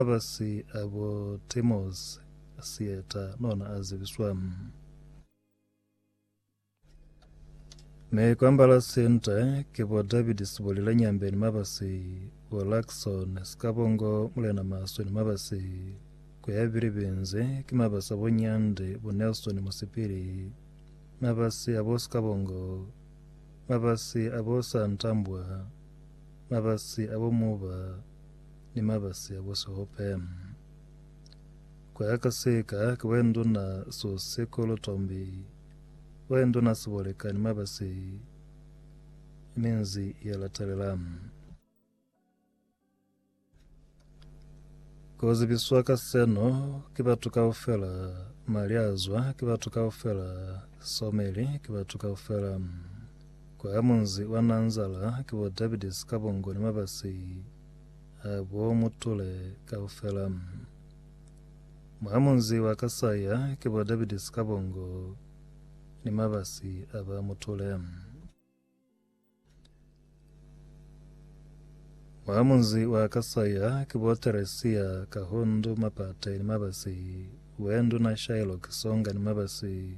Mabasi a bo Timos, Sieta, nona a zibiswa. Mi kwambala sinta ki bo David Siboli Lenyambe ni mabasi, bo Luckson Sikabongo Mulena Maswe ni mabasi. Ku ya bili binzi ki mabasi a bo Nyande, bo Nelson Musipili, mabasi a bo Sikabongo, mabasi a bo Santambwa, mabasi a bo Muba, ni mabasi a busihope. Kuya ka sika ki Boenduna Sosekulu Tombi, Boenduna Siboleka ni mabasi minzi ya latelela. Ku zibiswa ka seno ki batu kaufela, Maliazwa ki batu kaufela, Someli ki batu kaufela. Kwa ha munzi wa Nanzala ki bo Davidi Sikabongo ni mabasi a bo Mutule kaufela. Mwa ha munzi wa Kasaya ki bo Davidi Sikabongo ni mabasi a ba Mutule. Mwa ha munzi wa Kasaya ki bo Teresia Kahundu Mapate ni mabasi, Wendu na Shylock Songa ni mabasi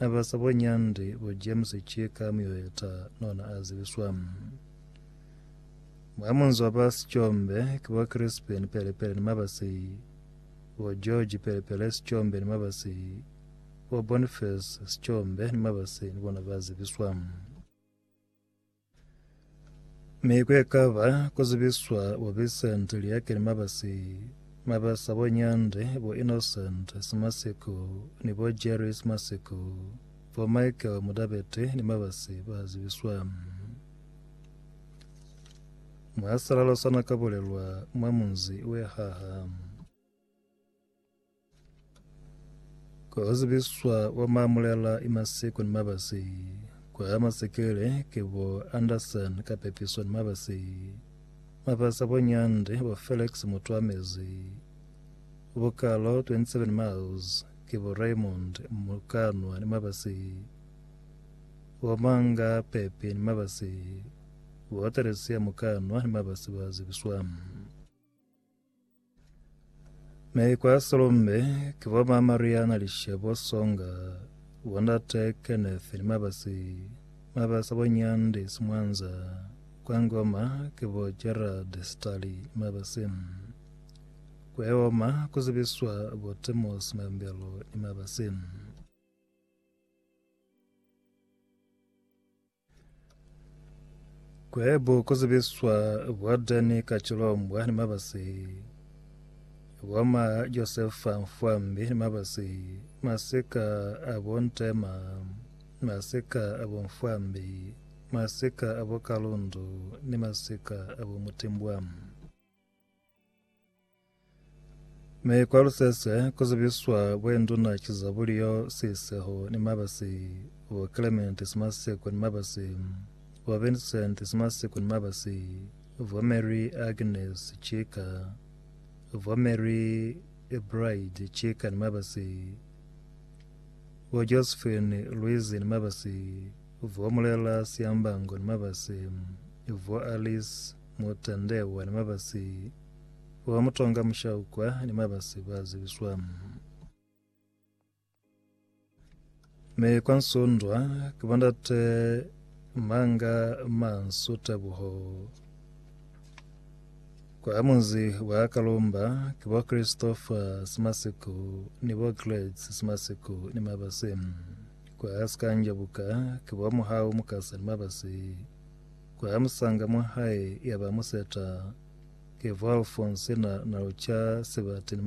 Na ba sa bo nyandi bo James ki ka muyuheta nona a zibiswa. Mwa munzi wa ba Sichombe ki bo Crispin pele pele ni Mabasi, bo George pele pele Sichombe ni Mabasi, bo Boniface Sichombe ni Mabasi ni bona ba zibiswa. Mi ku ekaba ku zibiswa bo Vincent Liake ni mabasi mabasa bo Nyande, bo Innocent Simasiko ni bo Jerry Simasiko, bo Michael Mudabete ni mabasi ba zibiswa. Mwasalalo sa na ka bulelwa mwa munzi we haha. Ku hazibiswa kwa maamulela i masiku ni mabasi ku ama sekele ki bo Anderson ka pepiso ni mabasi. Mabasi a bo Nyandi, bo Felix Mutuamezi, bo Kalo 27 Miles ki bo Raymond Mukanwa ni mabasi. Bo Manga Pepi ni mabasi, bo Theresia Mukanwa ni mabasi ba zibiswa. Me kwa Solombe ke bo ma Mariana Lishebo Songa, bo ndate Kenneth ni mabasi mabasa bo Nyandi Simwanza kwa Ngoma ke bo Gerald Stali ni mabasi. Kwa Eoma ku zibiswa bo Temos Mambelo ni mabasi. Kwebo ku zibiswa bwa Dani Kacilombwa ni mabasi bwa ma Josefa Mfwambi ni mabasi masika abo Ntema masika abo Mfwambi masika abo Kalundu ni masika abo Mutimbwa. Mi kwa lusese ku zibiswa bwenduna ki Zabulio Siseho ni mabasi bo Clement Simaseko ni mabasi bo Vincent Simaseko ni mabasi bo Mary Agnes Chika bo Mary Bride Chika ni mabasi bo Josephine Louise ni mabasi bo Mulela Siambango ni mabasi bo Alice Mutandewa ni mabasi Wa mutonga mushaukwa ni mabasi ba zibiswa. Me kwa nsundwa ke bandate manga mansu tebuho. Kwa munzi wa Kalumba ke bo Christopher Simasiku ni bo Gladys Simasiku ni mabasi. Kwa Sikanjabuka ke bo Muhau Mukasa ni mabasi. Ku ya musanga mwa hae ya ba museta, Kevwalfonse na, na luca sebate ni mabala.